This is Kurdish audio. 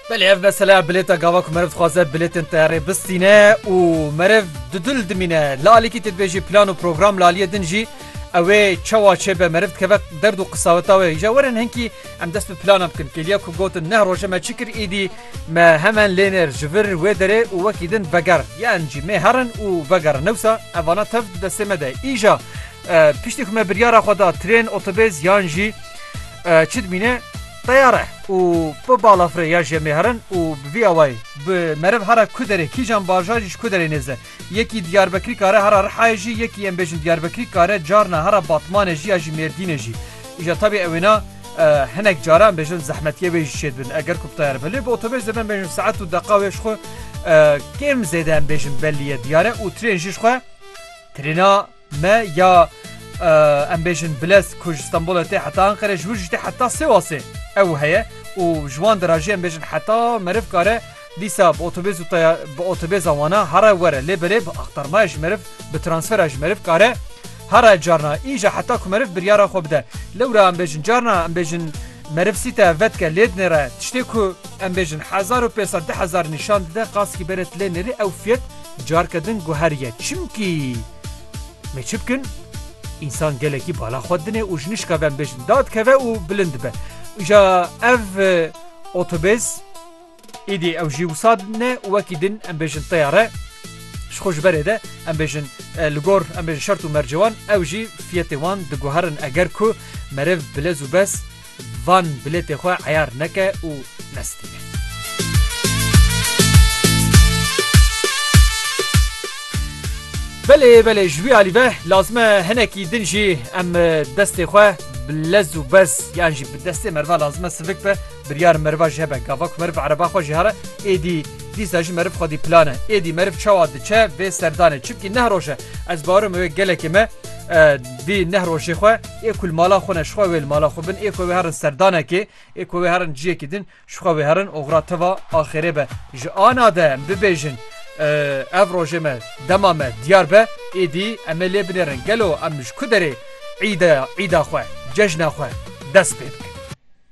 Belê ev mesela bilêta gava ku meriv dixwaze bilêtên teyarê bistîne û meriv di dil dimîne. Lalekî tê dibêjî plan û program laliyê din jî ewê çawa çêbe meriv dikeve derd û qisaweta wê. Îja werin hinkî em dest bi plana bikin. Kêliya ku gotin neh roje me çi kir îdî me hemen lênêr ji vir wê derê û wekî din veger. Yan jî mêh herin û vegerin. Newsa ev vana tev di destê me de. Îja piştî ku me biryara xwe da trên, otobês yan jî Çi dimîne teyar e û bi balafirê ya jê mêherin û bi vî awayî bi meriv hera ku derê kîjan bajar jî ji ku derê nêze. Yekî Diyarbekirî kare hera Rihayê jî yekî em bêjin Diyarbekirî kare carna hera Batmanê jî ya jî Mêrdînê jî. Îja tabî ew wêna hinek cara em bêjin zehmetiyê wê jî çêdibin eger ku bi teyar be. Lê bi otobês dê em bêjin saet û deqa wê ji xwe kêm zêde em bêjin bellî ye diyar e û trên jî ji xwe trêna Me ya em bêjin bilez ku ji Stenbolê tê heta Anqerê ji wir jî tê heta Sêwasê ew heye û ji wan de re jî em bêjin heta meriv kare dîsa bi otobêz û taya bi otobêza wana here were lê belê bi axtarmaya ji meriv bi transfera ji meriv kare here carna înja heta ku meriv biryara xwe bide lewra em bêjin carna em bêjin meriv sîte ev vedike lê dinê re tiştê ku em bêjin hezar û pêsed di hezar nîşan dide qaskî berê tu lê nêrî ew fiyet Carke din guheriye çimkî me çi bikin? Însan gelekî bala xwe dine û ji nişka ve em bêjin dad keve û bilind be. Îja ev otobês îdî ew jî wisa ne û wekî din em bêjin teyare ji xwe ji berê de em bêjin li gor em bêjin şert û mercewan ew jî fiyetê wan diguherin eger ku meriv bilez û bes Van bilêtê xwe eyar neke û nestîne. Belê belê ji wî alî ve lazim e hinekî din jî em destê xwe bi lez û bez yan jî bi destê meriva lazim e sivik be biryar meriva jê hebe gava ku meriv ereba xwe jê here êdî dîsa jî meriv xwedî plan e êdî meriv çawa diçe vê serdanê çimkî neh roj e ez bawer im wê gelekê me dî neh rojê xwe Ê ku li mala xwe ne, ji xwe wê li mala xwe bin, ê ku wê herin serdanekê, ê ku wê herin ciyekî din, ji xwe wê herin oxira teva axêrê be. Ji ana de em bibêjin ev rojê me, dema me diyar be, êdî em ê lê binêrin gelo em ji ku derê îda îda xwe, cejna xwe dest pê bikin.